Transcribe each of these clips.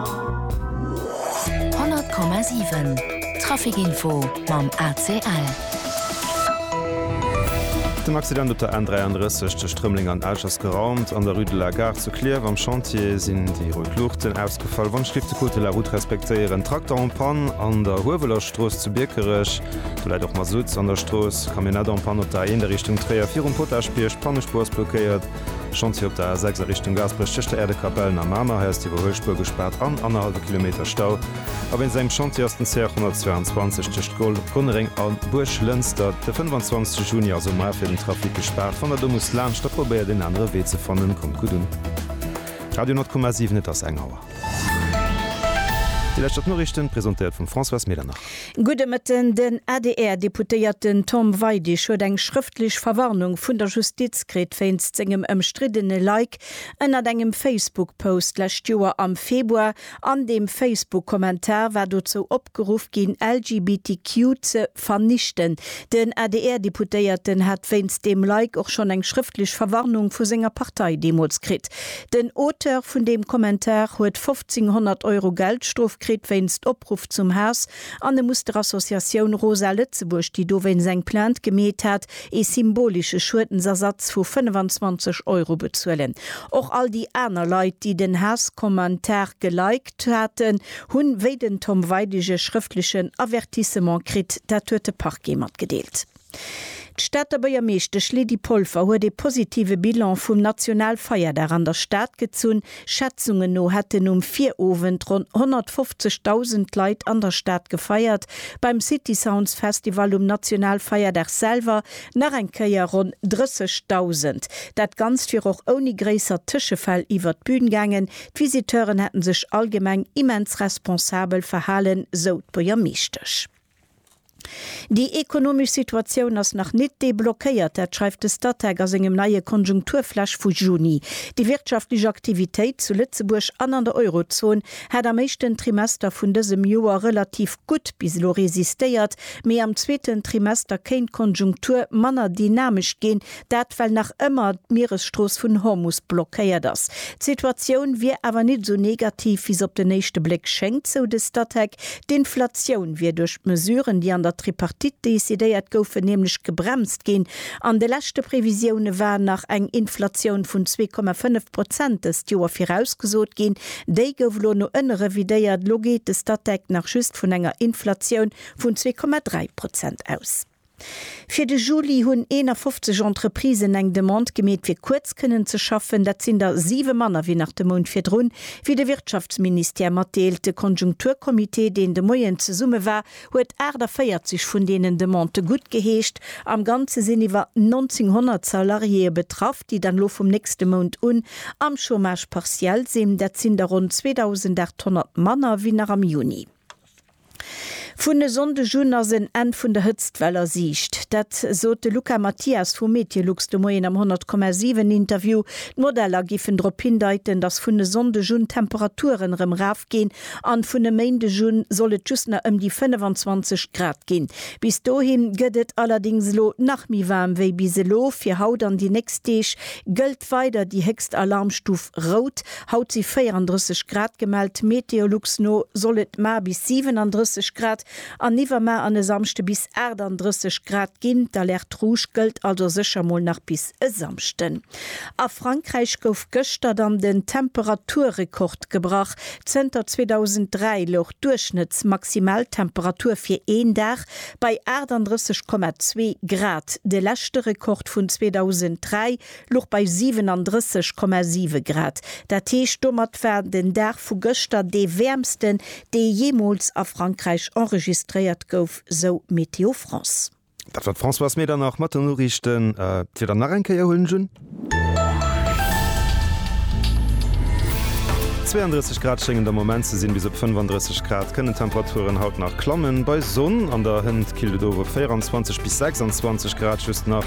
100,7 Traficinfo mam ACL. Den Accident op der N33 tëscht Rëmeleng an Esch ass geraumt. An der Rue de la Gare zu Klierf am Chantier sinn déi rout Luuchten ausgefall. Wandschliff de Code de la Route respektéieren. Trakter en Panne an der Huewelerstrooss zu Biekerech. Do läit och Mazout an der Strooss. Camionette en Panne op der A1 a Richtung Tréier virum Potaschbierg. D'Pannespuer ass blockéiert. Chantier op der A6 a Richtung Gaasperech tëscht der Äerdekapellen a Mamer, hei ass d'Iwwerhuelspuer gespaart an annerhallwe Kilometer Stau. A wéinst engem Chantier ass den CR 122 tëscht Goll, Gonnereng a Buerglënster de 25 Juni also mar fir den Trafic gespaart. Wann der do musst laanscht, da probéiert een anere Wee ze fannen. Kommt gutt un. Radio 10,7 Et ass eng Auer. Déi lescht op d'Noriichten, presentéiert vum Françoise Medernach. Gudde Mëtten, Den ADR-Deputéierten Tom Weidig huet eng schrëftlech Verwarnung vun der Justiz kritt wéinst sengem ëmstriddene Like ënnert engem Facebook-Post lescht Joer am Februar. An deem Facebook-Kommentar war dozou opgeruff ginn, LGBTQ ze vernichten. Den ADR-Deputéierten hat wéinst deem Like och schonn eng schrëftlech Verwarnung vu senger Partei deemools kritt. Den Auteur vun deem Kommentar huet 1500 Euro Geldstrof kritt wéinst Opruff zum Haass an e muss der Associatioun Rosa Lëtzebuerg, déi dowéinst eng Plainte gemeet hat, ee symbolesche Schuedensersatz vu 25 Euro bezuelen. Och all déi aner Leit, déi den Haasskommentar geliked haten, hunn, wéi den Tom Weidig, e schrëftlechen Avertissement kritt. Dat huet de Parquet matgedeelt. D'Stater Bëiermeeschtesch Lydie Polfer huet ee positive Bilan vum Nationalfeierdag an der Stad gezunn. Schätzungen no hätten um Virowend ronn 150.000 Leit an der Stad gefeiert. Beim City Sounds Festival um Nationalfeierdag selwer nach eng Kéier ronn 30.000. Dat Ganzt wier och ouni gréisser Tëschefäll iwwert d'Bün gaangen. D'Visiteuren hätten sech allgemeng immens responsabel verhalen, sou d'Buergermeeschtesch. Déi ekonomesch Situatioun ass nach nit deblockéiert, dat schreift de Statec a sengem neie Konjunkturflash vu Juni. Déi wirtschaftlech Aktivitéit zu Lëtzebuerg an an der Eurozon hat am éischten Trimester vun dësem Joer relativ gutt bis elo resistéiert, mee am zweeten Trimester kéint d'Konjunktur manner dynamesch ginn, Dat well nach ëmmer d'Mieresstrooss vun Hormus blockéiert ass. D'Situatioun wier awer nit esou negativ wéi se op den éischte Bléck schéngt, sou de Statec. D'Inflatioun wier duerch d'Mesuren, déi an der Tripartite decidéiert goufen, nämlech gebremst ginn. An de leschte Previsioune war nach eng Inflatioun vun zwee Komma fënnef Prozent dëst Joer virausgesot ginn. Déi gouf elo no ënne revidéiert. Elo geet de Statec nach just vun enger Inflatioun vun zwee Komma dräi Prozent aus. Fir de Juli hunn 51 Entreprisen eng Demande gemeet fir kuerz kënnen ze schaffen. Dat sinn der siwe manner wéi nach de Mount virdrun, wéi de Wirtschaftsministère matdeelt. De Konjunkturcomité, deen de Moien zesumme war, huet 48 vun deenen Demandë guttgeheescht. Am Ganze sinn iwwer 1900 Salariéeë betraff, déi dann elo vum nächste Mount un am Chômage partiel sinn. Dat sinn der ronn 2.800 manner wéi nach am Juni. Vun e Sonndeg un ass en Enn vun der Hëtztwell a Siicht. Dat sot de Luca Mathias vu Meteolux de Moien am 100,7 Interview. D'Modeller géifen drop hindeiten, datt vun e Sonndeg un d'Temperaturen erëm raf ginn an vun e Méindeg un soll et just nach ëm déi 25 Grad ginn. Bis dohin gëtt et allerdéngs elo nach méi waarm wéi bis elo. Fir haut an déi nächst Deeg gëllt weider déi héchst Alarmstuf Rout. Haut si 34 Grad gemellt, Meteolux no soll et mar bis 37 Grad an iwwermar an e Samschde bis 38 Grad ginn. D'Alerte Rouge gëllt also sécher mol nach bis e Samschden. A Frankräich gouf gëschter dann den Temperaturrekord gebrach. Zënter 2003 louch d'Duerchschnëttsmaximaltemperatur fir een Dag bei 38,2 Grad. De leschte Rekord vun 2003 Luch bei 37,7 Grad. Dat heescht, domat war den Dag vu gëschter dee wäermsten, dee jeemools a Frankräich enregistréiert gouf, sou Météo France. Dat war d'Françoise Medernach mat den Noriichten. D'Wieder nach eng Kéier huelen ech un. 32 Grad schéngen der Moment ze sinn. Bis op 35 Grad kënnen d'Temperaturen haut nach klammen. Bei Sonn an der Hënt killt et of op 24 bis 26 Grad just nach.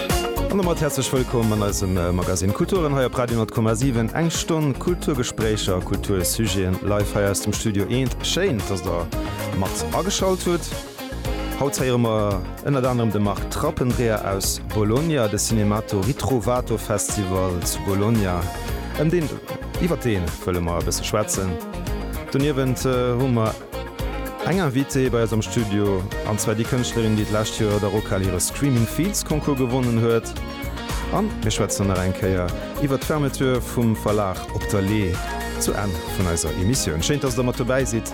An domat häerzlech wëllkomm an eisem Magazine Kulturen hei op Radio 10,7. Eng Stonn Kulturgespréicher a Kultursujeten live hei aus dem Studio Eent. Schéin, dass Der mat ageschalt hutt. Haut héiere mer ënnert anerem de Marc Trappendreher aus Bologna, de Cinemato Ritrovato Festival zu Bologna, ëm deen, iwwer dee wëlle mer e bësse schwätzen. Doniewent hu mer. Eng Invitée bei eis am Studio, an zwar déi Kënschtlerin, déi d'lescht Joer der Rockhal hire Screaming Fields Concours gewonnen huet. An mir schwätzen nach eng Kéier iwwert d'Fermeture vum Verlag Op der Lee zu Enn vun eiser Emissioun. Schéin, dass der mat dobäi sidd.